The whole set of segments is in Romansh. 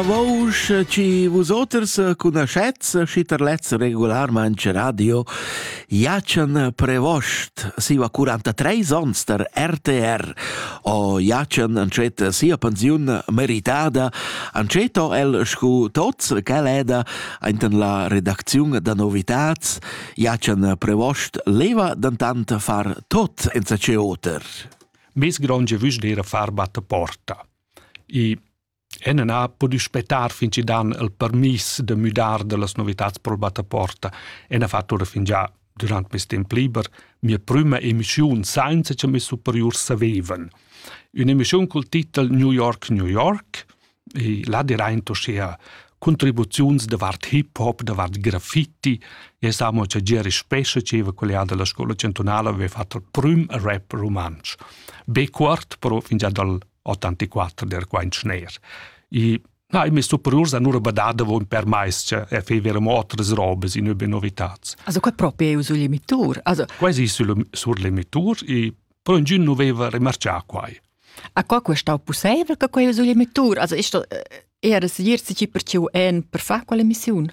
Vousch chi vus oters cunoschets schi tar lez regularmente radio jacen prevost siva 43 ons tar RTR o jacen ancet sia pensiun meritada anceto el scu tots quel eda ainten la redacziun da novitats jacen prevost leva dantant far tot enza ce oter Bis gronge vüs dir far batte porta. I Ena n'a pudü spettar fin chi dan il permiss da müdar da las novitats pro'l battaporta e n'ha fat oura fingià dürant meis temp liber mia prüma emischiun sainza cha meis superiurs savevan. Ün'emischiun cul titel New York, New York e là diraint uschea contribuziuns davart hip hop, davart graffiti e es amo cha Gieri Spescha, gieva collià da la scoula chantunala, aveva fat il prüm rap rumantsch. Be cuort, però fingià dal 84 der quaint schner. I Na, mi superiurs han ura badada von per mais che er fe vera motras robes in über novitats. Also quai proprio è sul limitur. Also quasi sul, sur limitur e però ingin non veva remarcià quai. A qua questo è possibile che quai sul limitur? Also ist das eher ein Ziel, sich per ciu en per fare quella mission?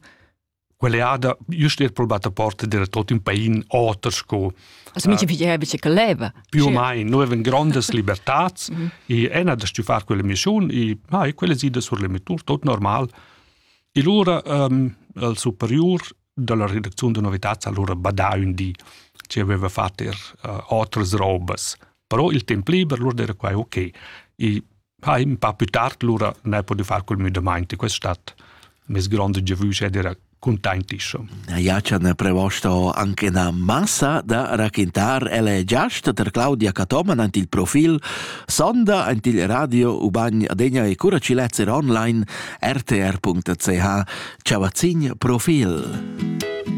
quell'eada just er probat a porta dera tot un pain oter sco Also mi pigliava bicicletta. Più o meno, noi avevamo grandi libertà e una da stufare quella missione e ah, quelle side sur le mitur, tot normal. E allora um, il superior della redazione di novità allora badava un di ci aveva fatto er uh, otras robes però il temp liber lur era quai ok. I ha in pa più tard lura ne podiu far col müdamaint e quest stat mes grande giavüsch ed era contentiscio. Iacia ne prevosto anche na massa da raquintar ele giast ter Claudia Catoman ant il profil sonda ant il radio uban adegna e cura ci lezer online rtr.ch ciavazzin profil.